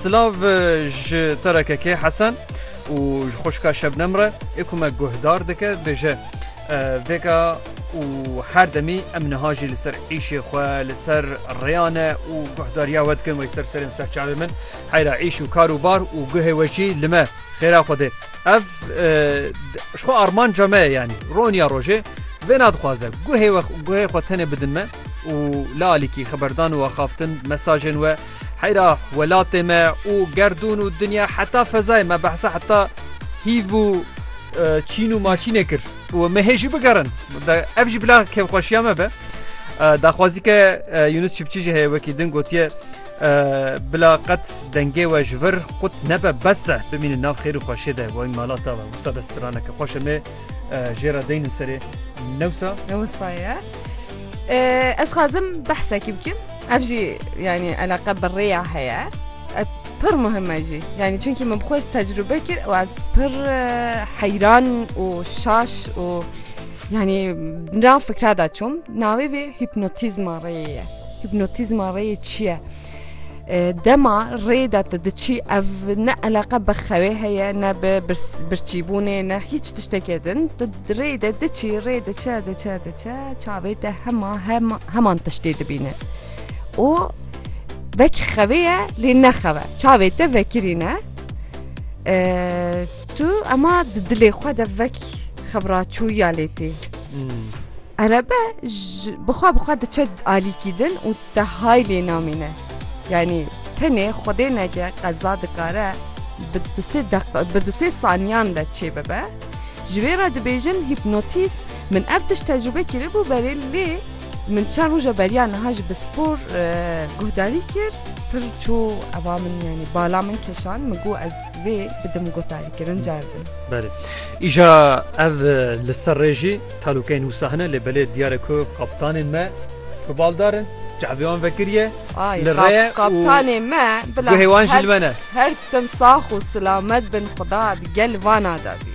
Silav ji te re kekê Hesen û ji xwişka Şebnem re ê ku me guhdar dike dibêje vêka û her demî em niha jî li ser îşê xwe li ser rêya ne û guhdariya we dikin wê ser serên ser çavê min heyra îş û kar û bar û guhê we jî li me xêra xwe dê ev ji xwe armanca me yanî roniya rojê vê nadixwaze guhê we guhê xwe tenê bidin me û li alîkî xeberdan û axaftin mesajên we Heyra welatê me û gerdûn û dinya heta fezayê me behsa heta hîv û çîn û maçînê kir û me hê jî bigerin ev jî bila kevxweşiya me be daxwazî ke Yunus Çiftçî jî heye wekî din gotiye bila qet dengê we ji vir qut nebe bes e bimînin nav xêr û xweşê de wayîn malata we wisa de straneke xweşe me jê re deynin serê newsa newsa ye ez xazim behsekî bikim ev jî yanî eleqe bi rêya heye pir muhime jî yanî çunkî min xweş tecrube kir û ez pir heyran û şaş û yanî na fikra da çûm navê vê hîpnotîzma rêyê ye hîpnotîzma rêyê çi ye Dema rê de tu diçî ev ne eleqe bi xewê heye ne bi birçîbûnê ne hîç tiştekê din. Tu rê de diçî rê diçe diçe diçe çavê te hema heman tiştê dibîne. û vekî xevê ye lê nexeve çavê te vekirîne tu ema di dilê xwe de vek xevraçûya lê tê. Erebe bixwe bixwe diçe alîkî din û Te hay lê namîne. Yanî tenê Xwedê neke qeza dikare bi du sê deq bi du sê saniyan de çê bibe. Ji vê re dibêjin hîpnotîzm. Min ev tişt tecrûbe kiribû berê lê min çend roja beriya niha jî bi spor guhdarî kir. Pir çû eva min yanî bala min kişand min got ez vê bidim guhdarîkirin cerdin. Belê. Îja ev li ser rê jî. Talûkeyên wisa hene lê belê diyar e ku kaptanên me bi baldar in, çavê wan vekiriye li rê ye û guhê wan jî li me ne. Her tim sax û silamet bin xuda di gel vana de bî.